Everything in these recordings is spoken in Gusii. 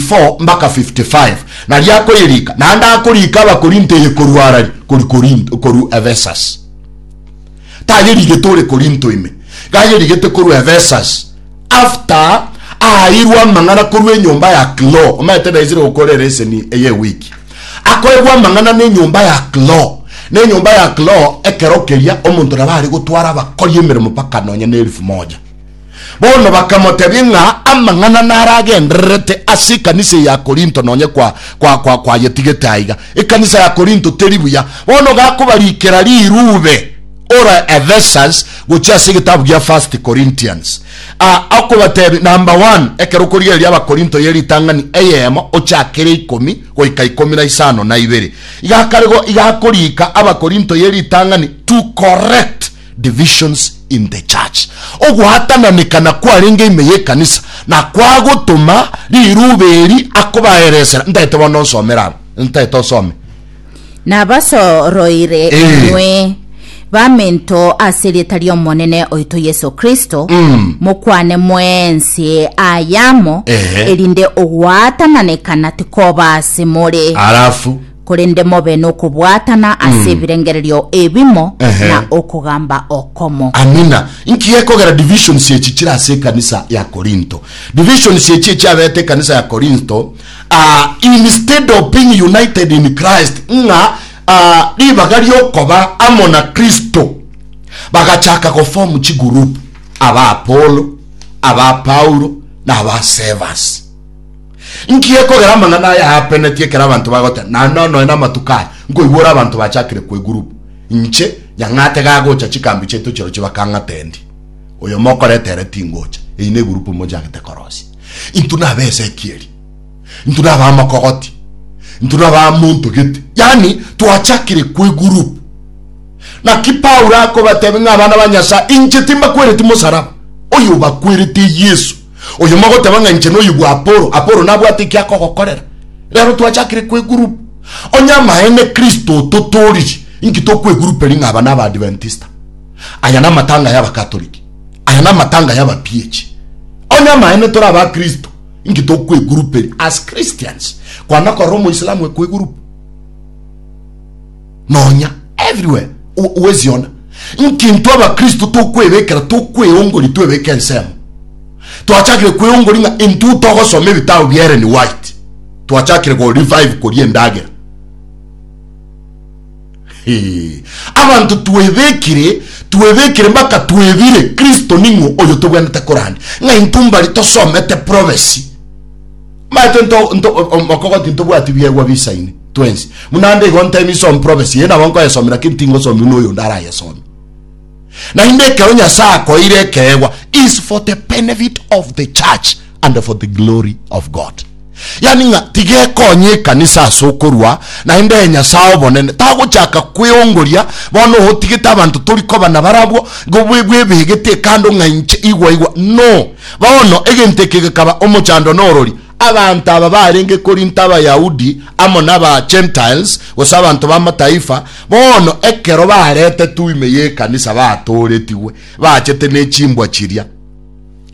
34-55, na riakoyerika, naende akorika Abakorinto eye korwa Arari korwa Korinto, korwa Ephesus. Tayerigete ore Korinto ime, iga ayerigete korwa Ephesus, after aaeirwe amang'ana korwa enyomba ya Klo, omanyete naisire gokora ereseni eye ewiki, akoegwa amang'ana nenyomba ya Klo, nenyomba ya Klo ekero keria omonto nabo are gotwara abakori emeremo mpaka nonya nelifu moja. Bono bakamotebia ng'a amang'ana naro agendererete ase ekanisa eye ya Korinto nonye kwayetigete aiga. Ekanisa ya Korinto teri buya. Bono gakobarikera rirube ore Ephesus gochia ase egetabu gia First Corinthians, akobatebia, Number one, ekero okorigereria Abakorinto ye ritang'ani eyemo ochake ria ikomi goika ikomi na isano na ibere, iga akarego iga akorika Abakorinto ye ritang'ani to correct divisions in the church, ogwatananekana kwarenge ime y'ekanisa, na kwagotoma riruube eri akobaeresera. Ntaete bono nsomere aba, ntaete osome. Nabasoroire Eh. inwe, baminto ase erieta ri'Omonene oito Yeso Kristo, Mm. mokwane mwensi ayamo, Eh. erinde ogwatananekana tikoba ase more. Alafu. korende mobe nokobwatana ase ebirengererio ebimo Ehe. na okogamba okomo. Amina. Inki gekogera divisions echi chire ase ekanisa ya Korinto? Divisions echi echiabete ekanisa ya Korinto, ah, instead of being united in Christ, ng'a ah, ribaga riokoba amo na Kristo, bagachaka goform chigroup, aba Apollo, aba Paulo, na aba Cephas. Inki gekogera amang'ana aya aapenetie ekero abanto bagoteba, Naende onoe namatuko aya nkoigwa ore abanto bachakire kwegurup? Inche nyang'ate gagocha chikambi chiaito chirochio bakang'ata endi, Oyomo okoreta ere tingocha, eyi negurup mochagete korosia. Intwe nabe Ezekieli, intwe nabe amokogoti, intwe nabe amonto gete. Yaani twachakire kwegurup. Naki Paulo akobatebia ng'a abana ba Nyasae, inche timbakwereti mosaraba, oyobakwerete Yesu. Oyo mogoteba ng'a inche noyio bwa Apolo, Apolo nabwate eki akogokorera, rero twachakire kwegurup. Onye amaene Kristo ototooriri, inki tokweguruperi ng'a aba n'Abaadventista? Aya namatanga y'Abakatoliki. Aya namatanga y'Abapiechi. Onye amaene tore aba Kristo, inki tokweguruperi as Christians? Kwana korora Omoislamu ekwegurup. nonya everywhere gweziona nki intwe abakristo tokwebekera tokweyongori twebeke ensemo twachakire kweyongori ng'a intwe togosoma ebitabo bia Ellen White twachakire go revive koria endagera abantu twebekire twebekire mpaka twebire kristo ning'o oyo tobwenete korandi ng'a intwe mbari tosomete prophecy Maete nto nto omokogo tintobwati biegwa bisaine twensi. Munande igo ntemi som prophecy ye nabo nkoyesomera ki ntingosomi uno oyo ndara yesome. Na inde ekero Nyasaye akoire ekeegwa is for the benefit of the church and for the glory of God. Yani ng'a tigekonye ekanisa ase okorua na inde Nyasaye obonene tagochaka kweongoria bono otigete abanto tori koba na barabwo go bwebegete ekando ng'a inche igwa igwa no Bono egento eke gekaba omochando na orori. Abanto aba barenge Korinto, Abayahudi amo naba Gentiles, gose abanto b'Amataifa, bono ekero baretetwe ime y'ekanisa batooretigwe bachete ne chimbwa chiria,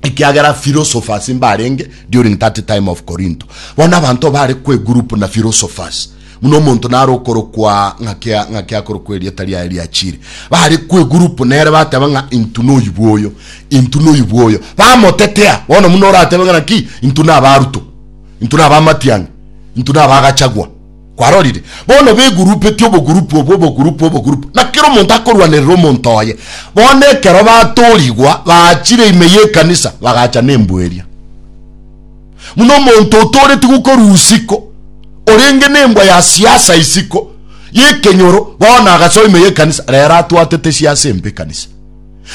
ekiagera philosophers mbarenge during that time of Korinto. Bono abanto bare kw'egurupu na philosophers. Buna omonto nare okorokwa ng'ake ng'ake akorokwa erieta riaye riachire, bare kwegurupu nere bateba ng'a intu noyubu oyo, intu noyubu oyo, bamotetea. Bono buna oratebe ng'a naki intu naba Ruto, intu naba Matiang'i, intu naba Gachagua. Kwarorire? Bono begurupeti obogurupu obwo obogurupu obogurupu, na kera omonto akorwanerera omonto oye. Bono ekero batorigwa, baachire ime y'ekanisa, bagacha nembu eria. Muna omonto otooretie gokorua isiko, orenge nembwa ya siasa isiko y'ekenyoro, bono agasoa ime y'ekanisa, rero atwatete siasa embe ekanisa.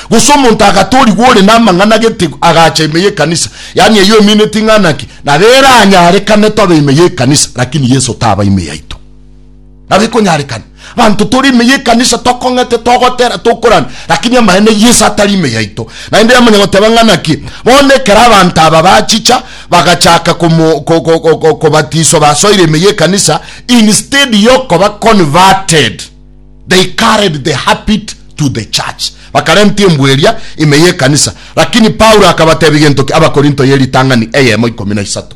Gose omonto agatoorigwa ore namang'ana gete agacha ime y'ekanisa, yaani eyio emine ting'ana ki, nabo eranyarekane tobe ime y'ekanisa, lakini Yeso taba ime yaito. Nabo ekonyarekana abanto tore ime y'ekanisa tokong'ete, togotera, tokorana, lakini amaene Yeso atari ime yaito. Naende yamanya goteba ng'a naki. Bono ekero abanto aba bachicha bagachaka komo, ko, ko, ko, ko, kobatiswa basoire ime y'ekanisa, instead y'okoba converted, they carried the habit to the church. Bakarenta embwa eria ime y'ekanisa. Lakini Paulo akabatebia gento ki? Abakorinto y'eritang'ani eyemo ikomi na isato.